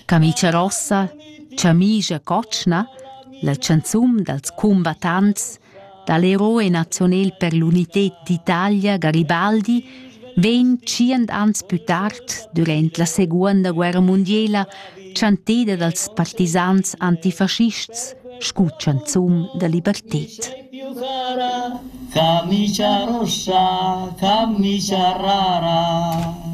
Camicia Rossa, Camicia Cotschna, la chanzun dals cumbattants da l'eroe nazional per l'unità d'Italia Garibaldi vegn tschient ans pü tard, durant la Seguonda guerra mundiela, chanteda dals partisans antifaschists scu chanzun da liberted. Camicia rossa, camicia rara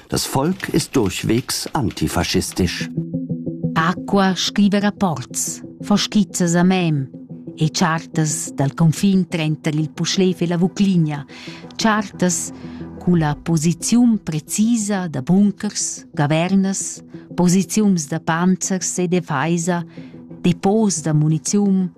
Das Volk ist durchwegs antifaschistisch. Acqua scrive rapports, fa skizzas a mem e chartas dal confin trenter il Puschlev e la Vucligna, chartas culla posiziun precisa da bunkers, gavernas, posiziuns da panzers e defeisa, depots da muniziun,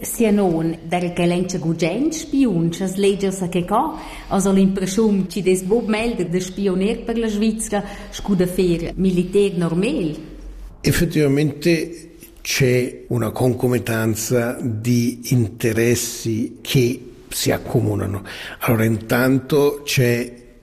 Sia nona, daco ch'el enza gugent spiun sch'as legias a che ca, as ho l'impreschiun chi'd es buc meglder da spiuner per la Svizra scu da fer militer normal. Effettivamente c'è una concomitanza di interessi che si accomunano. Allora intanto c'è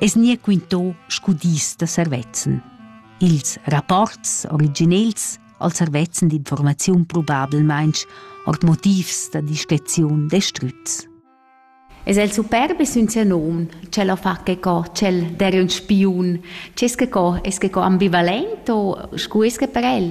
es gnir quinto scu dis da servezzan. Ils rapports originels al servezzan d'informaziun probablmainch ord motivs da discreziun destrüts. Es el superb e sün sia nom, ch'el ha fa che co, ch'el der un spiun, c'es che co, es che co ambivalent o scu es che per el?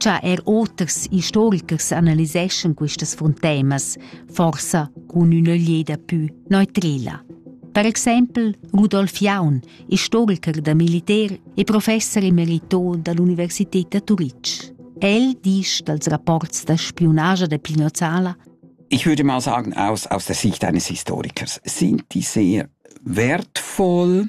cha er oters istorichers analyseschan questas fruntemas, forsa cun üna lieda pü neutrela. Per exempel Rudolf Jaun, istoriker da militer e professor emerito dall'Universität da Turitg. El disch dals rapports da spionagia de Pinozzala Ich würde mal sagen, aus, aus der Sicht eines Historikers sind die sehr wertvoll,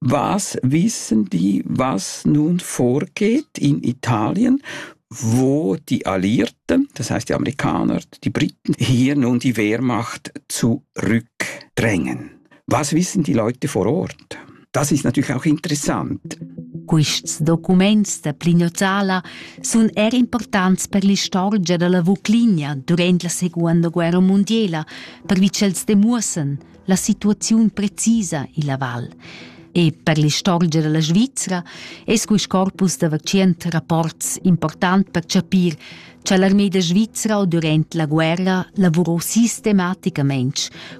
Was wissen die, was nun vorgeht in Italien, wo die Alliierten, das heißt die Amerikaner, die Briten, hier nun die Wehrmacht zurückdrängen? Was wissen die Leute vor Ort? Das ist natürlich auch interessant. Quests documents da Plignozzala sun er importants per l'istorgia da la Vuclinia durant la Seconda Guerra mundiela, pervi ch'els demuossan la situaziun precisa illa val. E per l'istorgia da la Svizra es quist corpus da vakcient rapports important per chapir cha l'armeda svizra durant la guerra lavurò sistematicamaing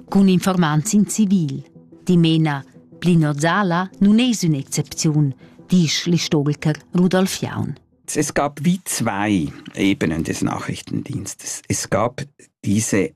cun informants in civil. Dimena, Plinozala nun es ün'excepziun, disch l'istoriker Rudolf Jaun. Es gab wie zwei Ebenen des Nachrichtendienstes. Es gab diese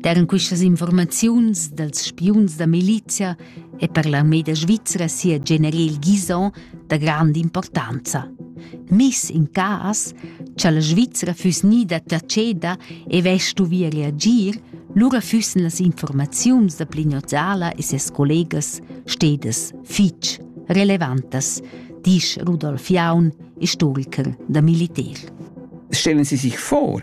Daran questas informaziuns dals spiuns da milizia è per l'armé da Svizra sia general Guizon da grande importanza. Miss in cas, cha la Svizra füss gnida taceda e vestuvia reagir, lura füssen las informaziuns da Plignozzala e ses collegas stedas fitg relevantas, disch Rudolf Jaun, istoriker da Militär. Stellen Sie sich vor,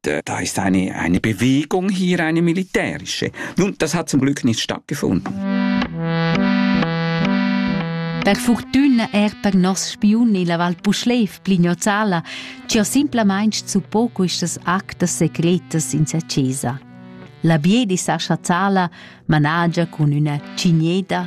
da ist eine, eine Bewegung hier, eine militärische. Nun, das hat zum Glück nicht stattgefunden. Per fortuna er per nos spiun illa Val Puschlev, Plignozzala, ci ho simplamain suppò questas actas secretas in sa chesa. La Biedi Sascha Zala managia cun üna cigneda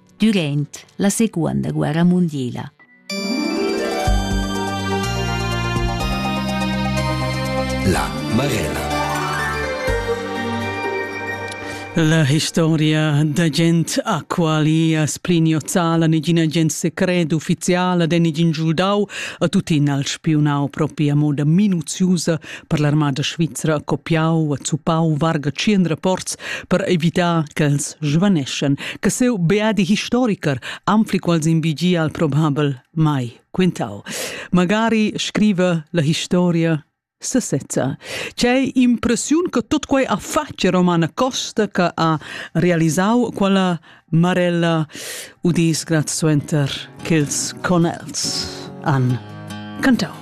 durant la seconda guerra mundiala. La Marella. La historia da gent a quali a spliniozala negina gent secret ufficiala den negin giuldau a tutin al spiunau propria moda minuziusa per l'armada svizra ha copiau, ha zuppau varga tschien rapports per evitar ch'els svaneschen, che seu beadi historiker anfli quals invigia al probabel mai quintau. Magari scrive la historia sesezza. C'è impressione che tutto quei ha fatto Romana Costa che ha realizzato quella marella u disgrat suenter che ils conels han cantato.